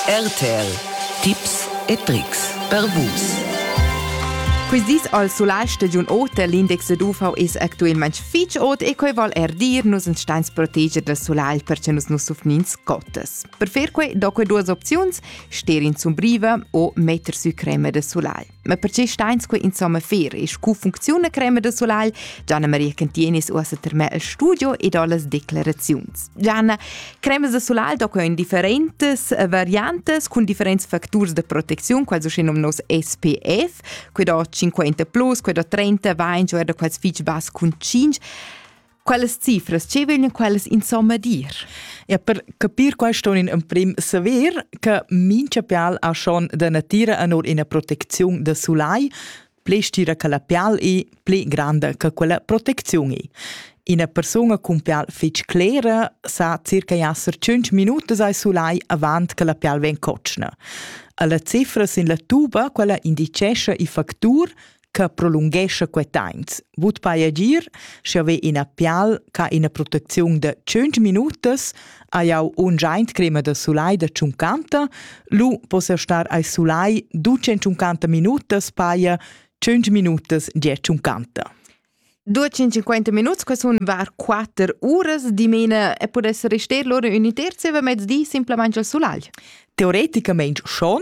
RTL Tipps e Tricks per Vus. Quist dis al sulais stagiun ota l'index da UVS actuelmaing fich ot e quai vol er dir nus ins stains proteger dal sulai perche nus nu suffnin scottas. Per fer quai do que duas opziuns, sterin sumbriva o metter sü crema da sulai. Ma perche stains que insomma fer e scu funcziuna crema da sulagl? Gianna Maria Cantinis uossa termè al studio e do las declaraziuns. Gianna, cremas da sulagl do in differentes variantes cun differents facturs de protezione, quals usce nom nos SPF, que do 50+, que do 30, va in giorno quals fich bas cun 5. Quelles cifras che vegnan quellas insomma dir? Ja, per capir questo in emprim saver che mincha pial ha schon da natira anor ina protecziun da sulai, ple stira che la pial è ple grande che quella protecziun è. Ina persona cun pial fitg clera sa circa esser 5 minutas ai sulai avant che la pial ven cocna. Alla cifra sin la tuba, quella indicesce i factur che prolunghescha quei temps. Vut vai agir, sche ve ina pial ca ina protecziun de 5 minutas, aiau un giant crema de sulai de 50, lu possa star ai sulai 250 minutas paia 5 minutas die 50. 250 minuts, que sun var 4 uras dimena e pudess rester loro uni terzi, ma mezdi simplamente al sulai. Teoreticamente schon,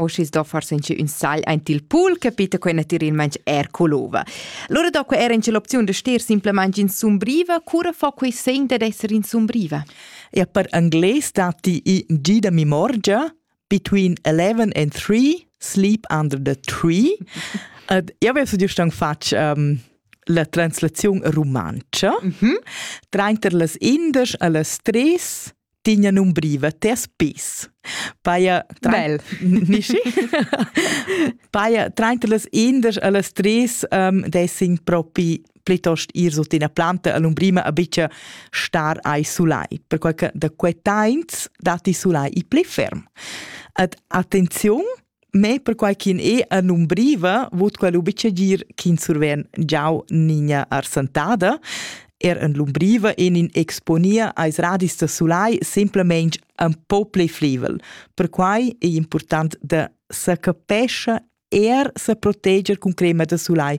O schi's do forse inche ün sagl aint il pool, capita quai natüralmaing eir co l'ova. Lura do que eir inche l'opziun da ster simplamaing insumbriva. Cura fa quai segn dad esser insumbriva? Ja, per anglais datti i Gi da mimorgia, between 11 and 3, sleep under the tree. Ed io avevo giust han fatg um, la translaziun rumantscha, mm -hmm. trainter las indesch e las tres tegna numbriva tes pes. Paia bel. Nischi? Paia trainter las indas a las tres um, dessin propi plitost ir sut ina planta all'umbrima a bicia star ai sulai, perquai che da quei tains datti sulai i pli ferm. Ed attenziun, Me perquai ch'in e a numbriva vut quel ubicegir ch'in surven giau nigna arsantada. Er en l'umbriva en in exponia ais radis da sulai semplamein un po plei flivel. Perquai è important da sa capescha er sa proteger cun crema da sulai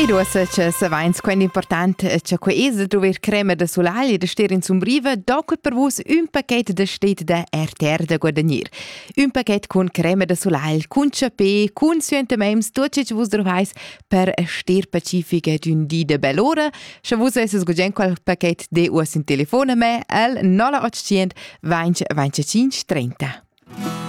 E duas che savens quant important è che quei es druver crema da solaglia da stir in sumbriva, doc per vus un paquet da stet da RTR da guadagnir. Un paquet cun crema da solaglia, cun chapè, cun suentemems, tot ce che vus drovais per stir pacifica d'un di de bell'ora. Sche vus esses gugent quel paquet de us in telefone me al 0800 20 25 30.